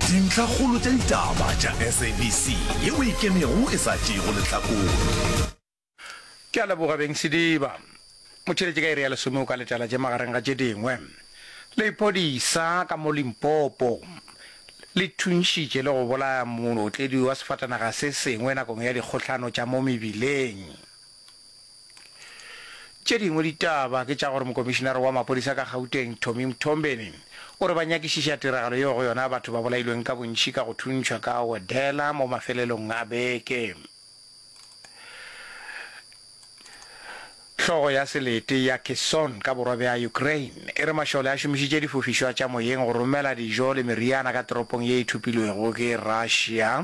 Dintlhakgolo tša ditaba tša SABC yeo e kenego e sa tšeego lehlakore. Ke a leboga Beng Sediba. Motšheletše ka iri ya lesome o ka letela tše magareng ga tše dingwe, Lephodisa ka mo Limpopo le thuntšhitše le go bolaya mootledi wa sefatanaga se sengwe nakong ya dikgohlano tša mo mebileng. Tše dingwe ditaba ke tša gore mokomišinare wa maphodisa ka Gauteng, Tommy Mthombeni, o re ba nyakišiša tiragalo yeo go yona batho ba bolailweng ka bontši ka go thuntšhwa ka wedela mo mafelelong a beke. Hlogo ya selete ya Kherson ka borwa bja Ukraine e re mašole a šomišitše difofišwa tša moyeng go romela dijo le meriana ka toropong ye e thopilwego ke Russia.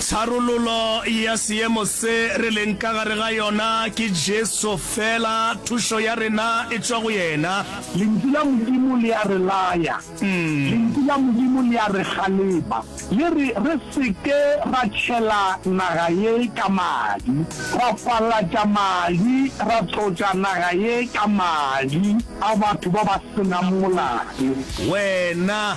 Tharololo ya seemo se re leng ka gare ga yona ke Jesu fela, thušo ya rena e tšwa go yena. Lentšu la Modimo le a re laya, Lentšu la Modimo le a re galeba, le re re se ke ra tšhela naga ye ka madi, ra palatša madi, ra tlotša naga ye ka madi a batho ba ba se nang molato. Wena